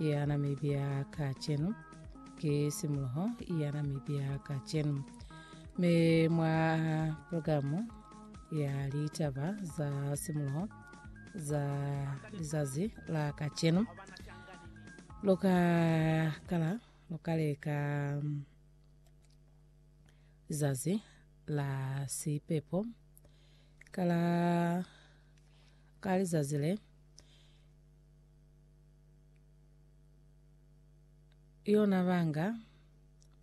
ya Namibia kacenu, ki simuloho ya Namibia kacenu. Me mwa programu ya litaba za simuloho za lizazi la kacenu, loka kala lokaleka mm, lizazi la sipepo kala ka lizazi le yona banga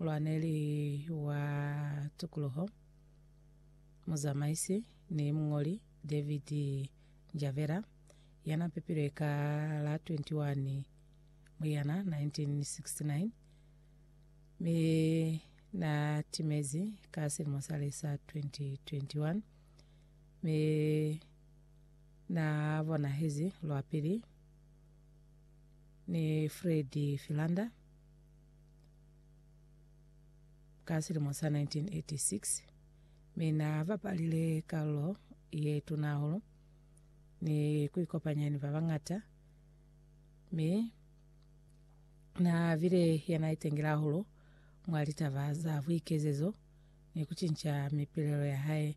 lwaneli wa tukuluho muzamaisi ni mungoli david njavera yana pepilwe ka la 21 muyana 1969 mi na timezi ka selimo sale sa 2021 mi na bonahezi lwa pili ni Fred Philander ka selemo sa 1986 mi na bapalile karolo ye tuna hahulu ni ku ikopanya ni ba bangata mi na bile yana itengela hahulu mwa litaba za buikezezo ni kucinca mipilelo ya hae